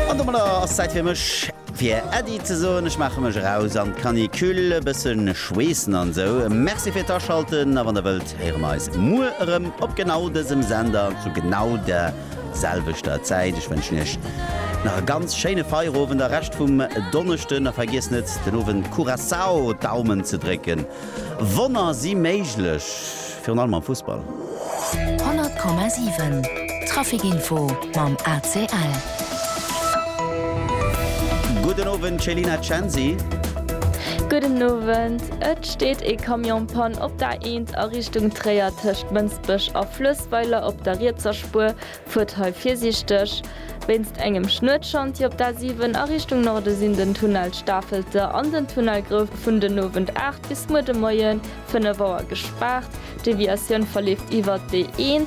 An domadder ass Zäit fir mech fir Äddi ze soen. Ech maache mech eraus an d'Canicule, e bëssen schweessen an esou. Merci fir d'Aschalten a wann der wëllt, héiere mer eis muer erëm op genau dësem Sender zu genau der selwechter Zäit. Ech wënschen iech nach e ganz schéine Feierowend a Rescht vum Donneschden a vergiesst net den Owend Curaçao d'Daumen ze drécken. Wonner si méiglech! Virun allem am Fussball. 100,7 Trafikinfo mam ACL. Gudden Owend Céline Censi. Gudden Owend. Et steet ee Camion Panne op der A1 a Richtung Tréier tëscht Mënsbech a Fluessweiler op der rietser Spuer. Fuert hei virsiichteg. Wéinst engem Schnuetschantier op der A7 a Richtung Norde sinn den Tunnel Stafelte an den Tunnel Grouf vun den Owend 8 bis muer de Moien 5 Auer gespaart, d'Deviatioun verleeft iwwert d'E1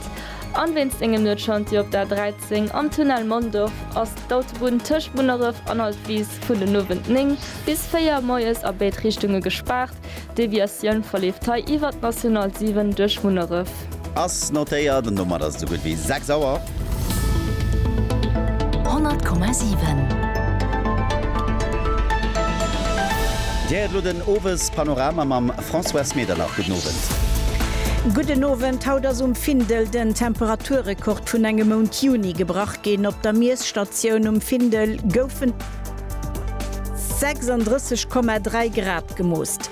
an wéinst engem Nuetschantier op der A13 am Tunnel Mondorf ass d'Autobunn tëscht Munneref an Altwis vun den Owend 9 bis 4 Moies a béid Richtunge gespaart, d'Deviatioun verleeft hei iwwert d'National 7 duerch Munneref. Ass notéiert an domat ass et esou gutt wéi 6 Auer. 100,7. Dir héiert elo den Owespanorama mam Françoise Medernach. Gudden Owend. Gudden Owend. Haut ass um Findel den Temperaturrekord vun engem Mount Juni gebrach ginn. Op der Miesstatioun um Findel goufen 36,3 Grad gemoost.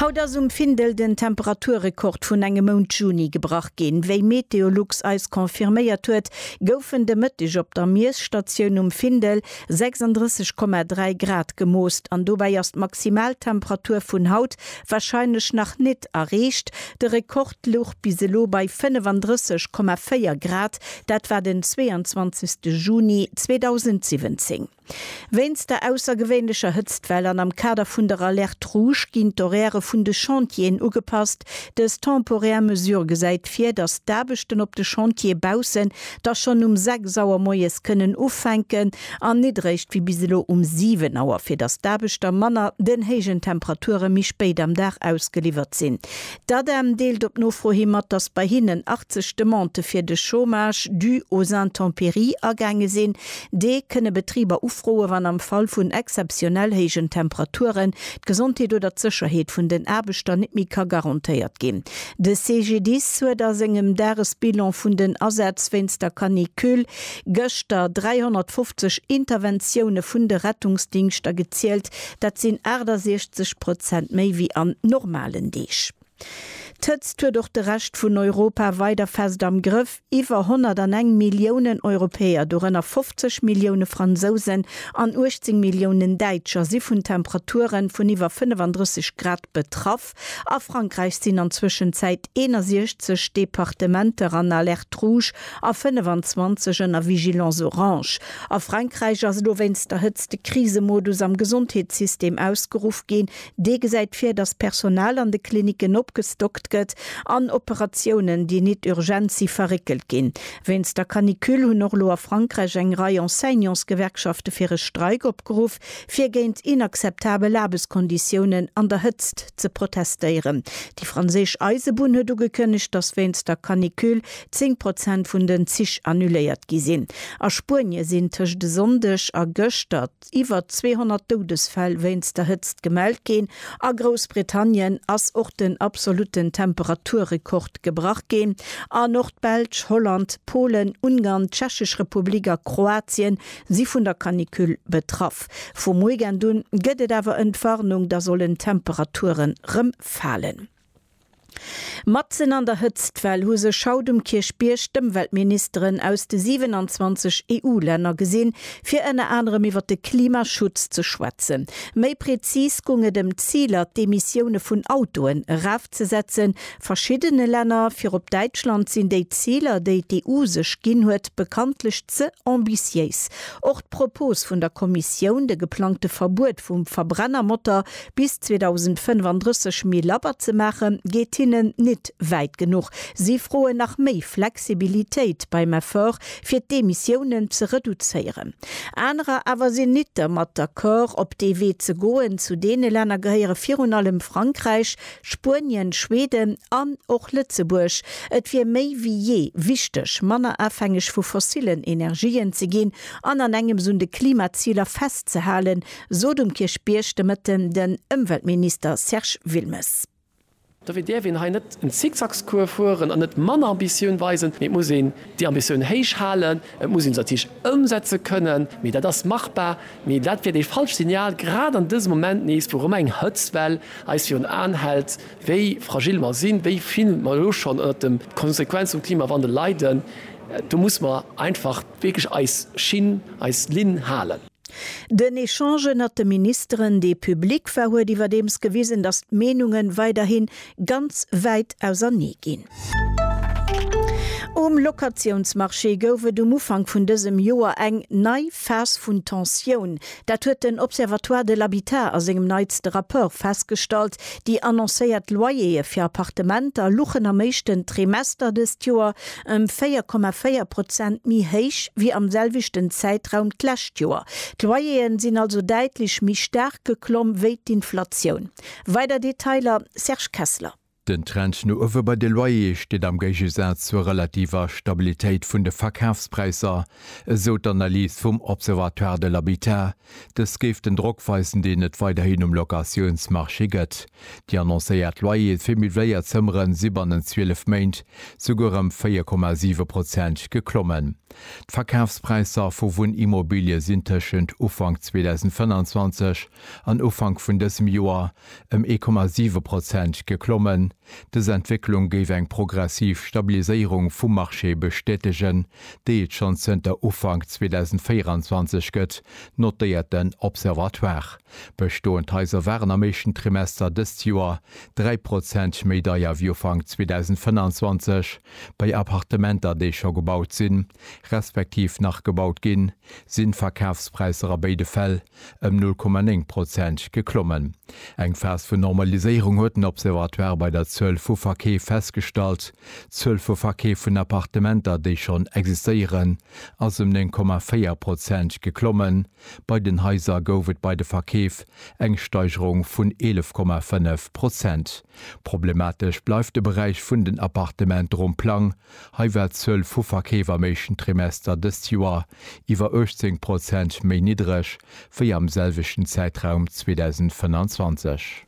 Haut ass um Findel den Temperaturrekord vun engem Mount Juni gebrach ginn. Wéi Meteolux eis confirméiert huet, goufen de Mëtteg op der Miesstatioun um Findel 36,3 Grad gemoost an dobäi ass d'Maximaltemperatur vun haut warscheinlech nach nit erreecht. De Rekord louch bis elo bei 35,4 Grad, dat war den 22 Juni 2017. Wéinst der aussergewéinlecher Hëtztwell an am Kader vun der Alerte Rouge ginn d'Horairë vun de Chantieren ugepasst. Dës temporär Mesure gesäit vir, datt d'Aarbechten op de Chantiere baussen da schonn um 6 Auer moies kënnen ufänken an nit eréischt wéi bis elo um 7 Auer, fir datt d'Aarbechter manner den héijen Temperature méi spéit am Dag ausgeliwwert sinn. D'ADEM deelt op Nofro hi mat, datt bei hinnen 80 Demandë fir de Chômage dû aux intempéries agaange sinn. Dee kënne Betriber ufroe wann am Fall vun exzeptionell héijen Temperaturen d'Gesondheet oder d'Sécherheet vun den Aarbechter net méi ka garantéiert ginn. De CGDIS huet a sengem Dagesbilan vun den Asätz wéinst der Canicule gëschter 350 Interventioune vun de Rettungsdingschter gezielt. Dat sinn 68 Prozent méi wéi an normalen Deeg. D'Hëtzt huet och de Rescht vun Europa weider fest am Grëff. Iwwer 101 Milliounen Europäer, dorënner 50 Millioune Fransousen an 18 Milliounen Däitscher, si vun Temperature vun iwwer 35 Grad betraff. A Frankräich sinn an Zwëschenzäit 61 Departementer an Alerte rouge a 25 ënner Vigilance orange. A Frankräich ass elo wéinst der Hëtzt de Krisemodus am Gesondheetssystem ausgeruff ginn. Dee gesäit vir, datt d'Personal an de Klinicken opgestockt gëtt an Operatiounen, déi nit urgent si verréckelt ginn. Wéinst der Canicule hunn och elo a Frankräich eng Rei Enseignantsgewerkschafte fir e Streik opgeruff, fir géint inakzeptabel Aarbechtskonditiounen an der Hëtzt ze protestéieren. Déi franséisch Eisebunn huet ugekënnegt, datt wéinst der Canicule 10 Prozent vun den Zich annuléiert gi sinn. A Spuenie sinn tëscht e Sonndeg a gëschter, iwwer 200 Doudesfäll wéinst der Hëtzt gemellt ginn. A Groussbritannien ass och den absolutten Temperaturrekord gebrach ginn. An och d'Belsch, Holland, Polen, Ungarn, d'Tschechesch Republik a Kroatien si vun der Canicule betraff. Vum Weekend un gëtt et awer Entwarnung, da sollen d'Temperature rëm falen. Matzen an der Hëtztwell hu sech haut um Kierchbierg d'Ëmweltministeren aus de 27 EU-Länner gesinn, fir ënner anerem iwwer de Klimaschutz ze schwätzen. Méi prezis gung et ëm d'Ziler, d'Emissioune vun Autoen erafzesetzen. Verschiddene Länner, virop Däitschland, sinn déi Ziler, déi d'EU sech ginn huet, bekanntlech ze ambitiéis. Och d'Propos vun der Kommissioun, de geplangte Verbuet vum Verbrennermotor Bis 2035 méi labber ze maache geet hinnen nit wäit genuch. Si froen nach méi Flexibilitéit beim Effort fir d'Emissiounen ze reduzéieren. Anerer awer sinn nit dermat d'accord op dee Wee ze goen. Zu deene Länner gehéiere virun allem Frankräich, Spuenien, Schweden an och Lëtzebuerg. Et wier méi wéi jee wichteg manner afhängeg vu fossillen Energien ze ginn an an engems un de Klimaziler festzehalen, sot um Kierchbierg de Mëtten den Ëmweltminister Serge Wilmes. Dofir däerf een hei net en Zickzackscours fueren an net manner Ambitioun weisen, mee et muss een déi Ambitioun héich halen. Et muss een se natierlech ëmsetze kënnen, mee dat ass machbar. Mee dat wier dee falscht Signal, grad an dësem Moment nees, wou erëm eng Hëtztwell eis virun Aen hält, wéi fragil mer sinn, wéi vill mer elo schonn ënnert de Konsequenze vum Klimawandel leiden. Do muss mer einfach wierklech eis Schinn, eis Linn halen. Den Echange ënnert de Ministeren, dee public war, huet iwwerdeems gewisen, datt d'Meenunge weiderhi ganz wäit ausernee ginn. Um Locatiounsmarché gouf et um Ufank vun dësem Joer eng nei Phas vun Tensioun. Dat huet den Observatoire de l'habitat a sengem neitste Rapport festgestallt. Déi annoncéiert Loyer'e fir Appartementer luchen am éischten Trimester dëst Joer ëm 4,4 Prozent méi héich wéi am selwechten Zäitraum d'lescht Joer. D'Loyer'e sinn also däitlech méi staark geklomm wéi d'Inflatioun. Weider Detailer, Serge Kessler. Den Trend no uewe bei de Loyer'e steet am Géigesaz zur relativer Stabilitéit vun de Verkafspräisser, esou d'Analys vum Observatoire de l'habitat, Dës géif den Drock weisen, deen et weiderhin um Locatiounsmarché gëtt. Déi annoncéiert Loyere fir meubléiert Zëmmere si bannent 12 Méint souguer ëm 4,7 Prozent geklommen. D'Verkafspräisser vu Wunnimmobilie sinn tëschent Ufank 2025 an Ufank vun dësem Joer ëm 1,7 Prozent geklommen. Dës Entwécklung géif eng progressiv Stabiliséierung vum Marché bestätegen, déi et schonn zënter Ufank 2024 gëtt, notéiert den Observatoire. Bestoend Haiser waren am éischten Trimester dëst Joer 3 Prozent méi deier wéi Ufank 2025. Bei Appartementer, déi scho gebaut sinn, respektiv nach gebaut ginn, sinn d'Verkafspräisser a béide Fäll ëm 0,9 Prozent geklommen. Eng Phas vun Normaliséierung huet den Observatoire bei der Zuel vu Verkeef festgestallt. D'Zuel vu Verkeef vun Appartementer, déi schonn existéieren, ass ëm 9,4 Prozent geklommen. Bei den Haiser gouf et bei de Verkeef eng Steigerung vun 11,5 Prozent. Problematesch bleift de Beräich vun den Appartement ronn Plang, Hei war d'Zuel vu Verkeef am éischten Trimester dëst Joer iwwer 18 Prozent méi niddreg wéi am selwechten Zäitraum 2025.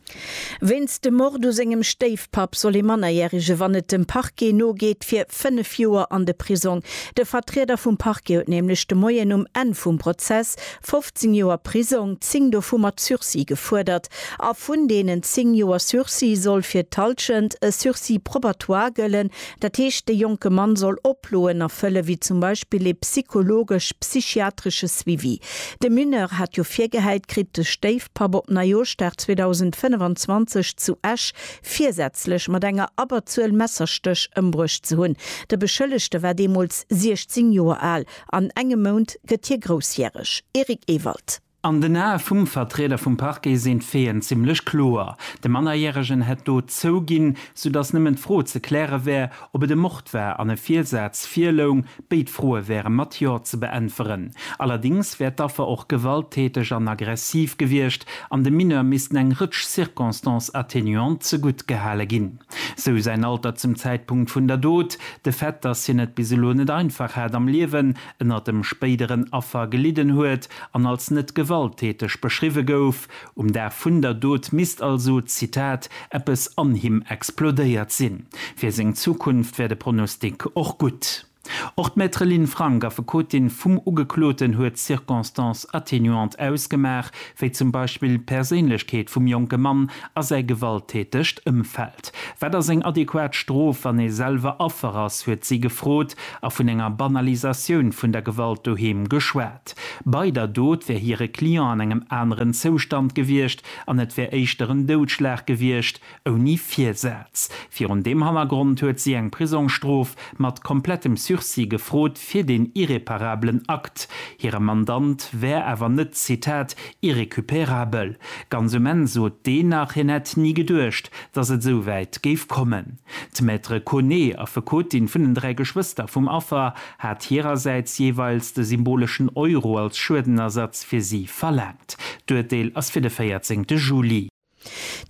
Wéinst dem Mord u sengem Stéifpapp soll ee Mannerjärege, wann et dem Parquet nogeet, fir fënnef Joer an de Prisong. De Vertrieder vum Parquet huet nämlech de Moien um Enn vum Prozess 15 Joer Prisong, zéng dovu mat Sursis, gefuerdert. A vun deenen zéng Joer Sursis soll fir d'Halschent e Sursis probatoire gëllen, Dat heescht, de jonke Mann soll Oploen erfëllen, wéi zum Beispill ee psychologesch, psychiatresche Suivi. De Mineur hat jo virgehäit kritt, de Stéifpapp op Neijooschdag 2025 zu Esch virsätzlech mat enger Abberzuel Messerstéch ëmbruecht ze hunn. De Beschëllegte war deemools 16 Joer al. An engem Mount gëtt hie groussjäreg. Eric Ewald. An den Ae vum Vertrieder vum Parquet sinn d'Feeën zimmlech kloer, De Mannerjäregen hätt d'Dot zouginn, soudatt nëmmen d'Fro ze kläre wär, ob et e Mord war an e Virsaz virloung. Béid Froe wäre mat Jo ze beäntweren. Allerdéngs wär d'Affer och gewalttäteg an aggressiv gewiescht an dem Mineur missten eng Rëtsch Circonstances atténuantes zegutt gehale ginn, sou säin Alter zum Zäitpunkt vun der Dot, de Fait, datt hien et bis elo net einfach hat am Liewen, ënner dem spéideren Affer gelidden huet an als net gewalttäteg beschriwwe gouf. Um Dag vun der Dot misst also, Zitat, eppes an him explodéiert sinn. Fir seng Zukunft wär de Pronostic och gutt. Och d'Maître Lynn Frank, Affekotin vum Ugekloten, huet d'Circonstances atténuantes ausgemaach, wéi zum Beispill d'Perséinlechkeet vum jonke Mann a säi gewalttätegt Ëmfeld. Wat ass eng adequat Strof, wann ee selwer Affer ass, huet si gefrot. a vun enger Banalisatioun vun der Gewalt doheem geschwat. Bei der Dot wär hire Client an engem aneren Zoustand gewiescht an et wär éischter en Doudschlag gewiescht, ouni Virsaz. Virun deem Hannergrond huet si eng Prisongsstrof mat komplettem Sursis gefrot fir deen irreparabelen Akt. Hire Mandant wär awer net, Zitat, irrécupérabel. Ganz um Enn sot deen nach, hien hätt ni geduecht, dass et esou wäit géif kommen. D'Maître Koné, Affekotin vun den dräi Geschwëster vum Affer, hat hirersäits jeeweils de symboleschen Euro als Schuedenersatz fir si verlaangt. D'Urteel ass fir de 14 Juli.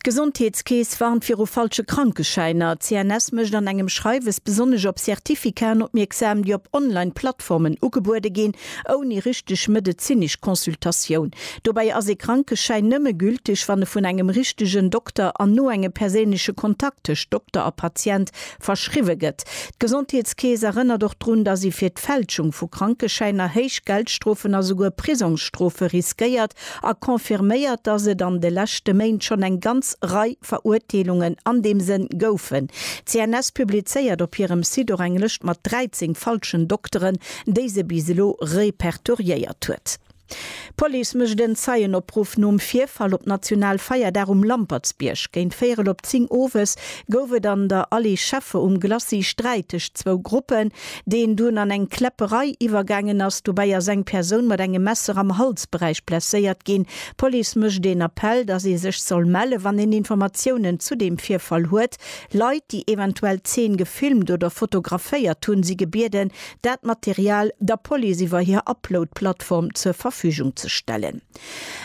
D'Gesondheetskeess warnt viru falsche Krankeschäiner. D'CNS mécht an engem Schreiwes besonnesch op Certificaten opmierksam, déi op Online-Plattformen ugebuede ginn, ouni richteg medezinesch Consultatioun. Dobäi ass ee Krankeschäin nëmme gülteg, wann e vun engem richtegen Dokter an no engem perséinleche Kontakt tëscht Dokter a Patient verschriwwe gëtt. D'Gesondheetskeess erënnert och drun, datt ee fir d'Fälschung vu Krankeschäiner héich Geldstrofen a souguer Prisongsstrofe riskéiert a confirméiert, datt et an de leschte Méint schonn eng ganz Rei Verurteelungen an deem Sënn goufen. D'CNS publizéiert op hirem Site och eng Lëscht mat 13 falschen Dokteren, déi se bis elo repertoriéiert huet. D'Police mécht en Zeienopruff nom Virfall op Nationalfeierdag um Lampertsbierg. Géint véierel op zéng owes gouf et an der Allée Scheffe um Glacis Sträit tëscht zwou Gruppen, deen dunn an eng Kläpperei iwwergaangen ass. Dobäi ass eng Persoun mat engem Messer am Halsberäich blesséiert ginn. D'Police mécht een Appell, dass ee sech soll melle wann een Informatiounen zu deem Virfall huet. Leit, déi eventuell d'Zeen gefilmt oder fotograféiert hunn, si gebieden, dat Material der Police iwwer hir Upload-Plattform zur Verfügung ze stellen.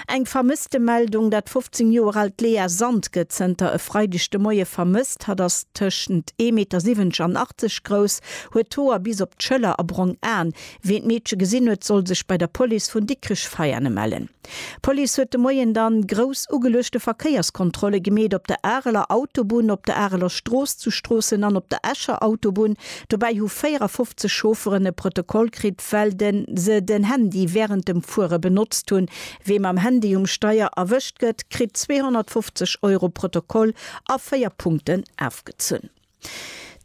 Eng Vermësstemeldung, Dat 15 Joer aalt Lea Sand gëtt zënter e Freideg de Moie vermësst. Hatt ass tëschent 1,70 Meter an 80 grouss, huet d'Hoer bis op d'Schëller a brong Aen. Ween d'Meedche gesinn huet, soll sech bei der Police vun Dikrech-Veiane mellen. D'Police huet de Moien dann grouss ugeluechte Verkéierskontrolle gemeet op der Areler Autobunn, op der Areler Strooss, zu Stroossen an op der Escher Autobunn. Dobäi hu 54 Chaufferen e Protokoll kritt, well se den Handy wärend dem Fuere benotzt hunn. Wee mam Handy um Steier erwëscht gëtt, kritt 250 Euro Protokoll a 4 Punkten ofgezunn.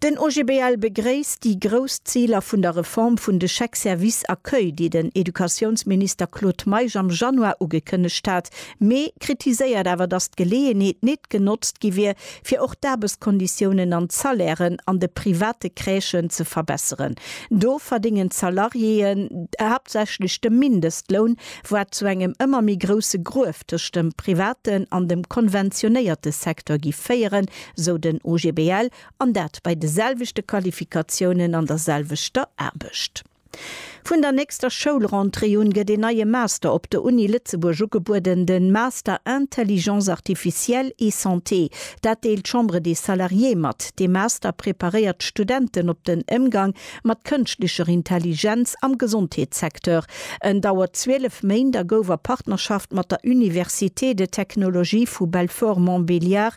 Den OGBL begréisst déi grouss Ziler vun der Reform vun de Chèques services accueil, déi den Educatiounsminister Claude Meisch am Januar ugekënnegt hat, mee kritiséiert awer, datt d'Geleeënheet nit genotzt gi wier, fir och d'Aarbechtskonditiounen an d'Salairen an de private Crèchen ze verbesseren. Do verdéngen d'Salariéeën haaptsächlech de Mindestloun, wat zu engem ëmmer méi grousse Gruef tëscht dem privaten an dem konventionéierte Secteur gi féieren, sou den OGBL, an dat bei de selwechte Qualifikatiounen an der selwechter Aarbecht. Vun der nächster Schoulrentrée un gëtt een neie Master op der Uni Lëtzebuerg ugebueden, de Master Intelligence artificielle et santé. Dat deelt d'Chambre des Salariés mat. Dee Master preparéiert d'Studenten op den Émgang mat kënschtlecher Intelligenz am Gesondheetssecteur. En dauert 12 Méint a gouf a Partnerschaft mat der Université de technologie vu Belfort-Montbéliard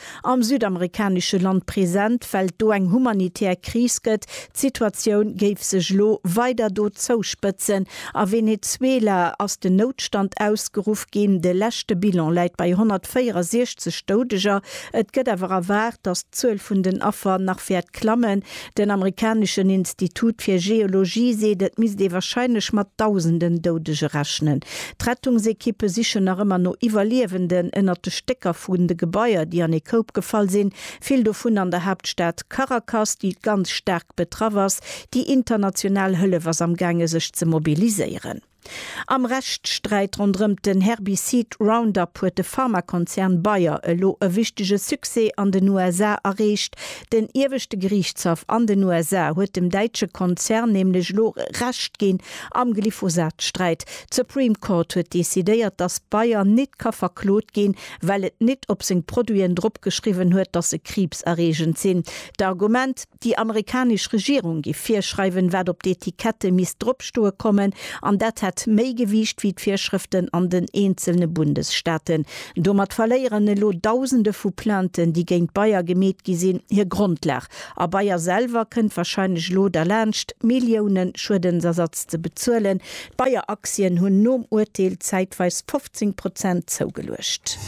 am südamerikanesche Land present, well et do eng humanitär Kris gëtt. D'Situatioun géif sech elo weider do zouspëtzen. A Venezuela ass den Noutstand ausgeruff ginn. De leschte Bilan läit bei 164 Doudeger. Et gëtt awer erwaart, datt d'Zuel vun den Affer nach wäert klammen. Den amerikaneschen Institut fir Geologie seet, et misst ee warscheinlech mat Dausenden Doudege rechnen. D'Rettungsekippe sichen nach ëmmer no Iwwerliewenden ënnert de Stécker vun de Gebaier, déi an ee Koup gefall sinn, vill dovun an der Haaptstad Caracas, déi ganz staark betraff ass. Déi international Hëllef ass amgaange sech ze mobiliséieren. Am Rechtssträit ronderëmt den Herbicid Roundup huet de Pharmakonzern Bayer elo e wichtege Succès an den USA erreecht. Den ieweschte Geriichtshaff an den USA huet dem däitsche Konzern nämlech elo Recht ginn am Glyphosat-Sträit. D'Supreme Court huet decidéiert, datt Bayer nit ka verklot ginn, well et nit op seng Produiten dropgeschriwwen huet, datt se kriibserreegend sinn. D'Argument. Déi amerikanesch Regierung géif virschreiwen, wat op d'Etikette misst dropstoe kommen, an dat hätt méi Gewiicht wéi d'Virschrëften an den eenzelne Bundesstaaten. Domat verléieren elo Dausende vu Plainten, déi géint Bayer gemeet gi sinn, hir Grondlag. A Bayer selwer kënnt warscheinlech elo derlaanscht, Millioune Schuedensersatz ze bezuelen. D'Bayer-Aktien hunn nom Urteel zäitweis 18 Prozent zougeluecht.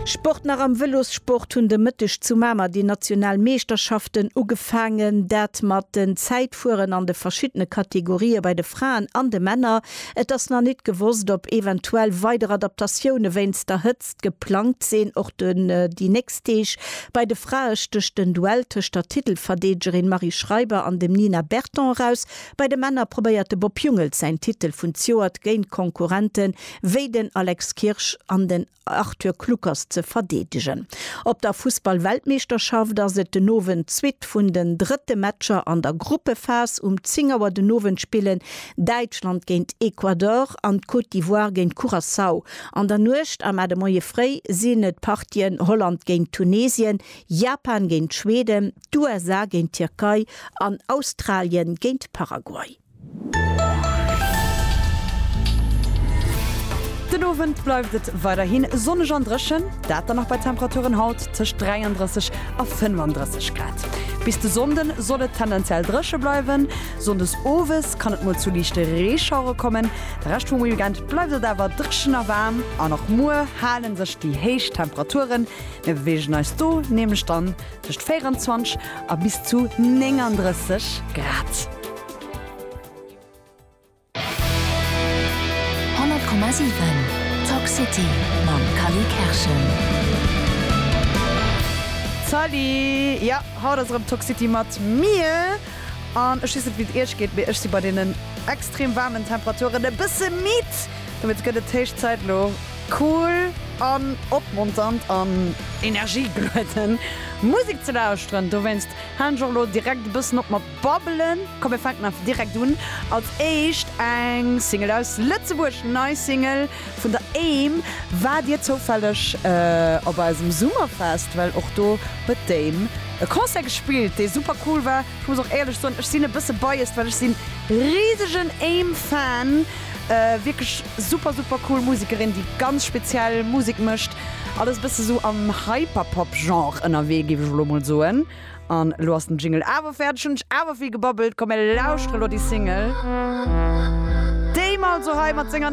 Sport Nach am Vëlossport hunn de Mëtteg zu Mamer déi national Meeschterschaften ugefaangen. Dat mat den Zäitfueren an de verschiddene Kategorië bei de Fraen an de Männer. Et ass nach nit gewosst, ob eventuell weider Adaptatioune wéinst der Hëtzt geplangt sinn. Och déi nächst Deeg bei de Frae stécht den Duell tëscht der Titelverdeedegerin Marie Schreiber an dem Nina Berton eraus. Bei de Männer probéiert de Bob Jungels säin Titel vun d'Joert géint Konkurrente wéi den Alex Kirsch an den Arthur Kluckers ze verdeedegen. Op der Fussballweltmeeschterschaft ass et den Owend d'Suite vun den drëtte Matcher an der Gruppephas. Um 10 Auer den Owend spillen Däitschland géint Ecuador an d'Côte d'Ivoire géint Curaçao. An der Nuecht a mar de Moie fréi sinn et d'Partien Holland géint Tunesien, Japan géint Schweden, d'USA géint d'Tierkei an Australien géint Paraguay. Den Owend bleift et weiderhi sonneg an dréchen, dat dann och bei Temperaturen haut tëscht 33 a 35 Grad. Bis de Sonnde soll et tendenziell dréche bleiwen, sonndes owes kann et mol zu liichte Reeschauere kommen. De Rescht vum Weekend bleift et awer dréchen a waarm an och muer hale sech déi héich Temperaturen. Mir beweegen eis do nämlech dann Tëscht 24 a bis zu 39 Grad. Salut, jo haut ass erëm Talk City mat mir an ech weess net wéi et iech geet, mee ech si bei deenen extrem waarmen Temperaturen e bësse midd, dowéinst gëtt et héich Zäit elo, Cool an opmonternd an energiegluedend Musik ze lauschteren. Dowéinst haalen ech och elo direkt e bëssen op mat babbelen. Komm mir fänken einfach direkt un. Als éischt eng Single aus Lëtzebuerg, nei Single vun der Aim. Waart dir zoufälleg op eisem Summerfest? Well och do huet d'Aim e Concert gespillt, dee super cool war. Ech muss och éierlech soen, ech sinn e bësse biased, well ech sinn risegen Aim Fan. Wierklech super super cool Musekerin, déi ganz speziell Musek mécht. Alles e bësse sou am Hyperpop Genre ënnerwee, géif ech elo mol soen. An elo ass den Jingle awer fäerdeg, hunn ech awer vill gebabbelt. Komm mir lauschtere lo déi Single, déi mer also hei mat senger.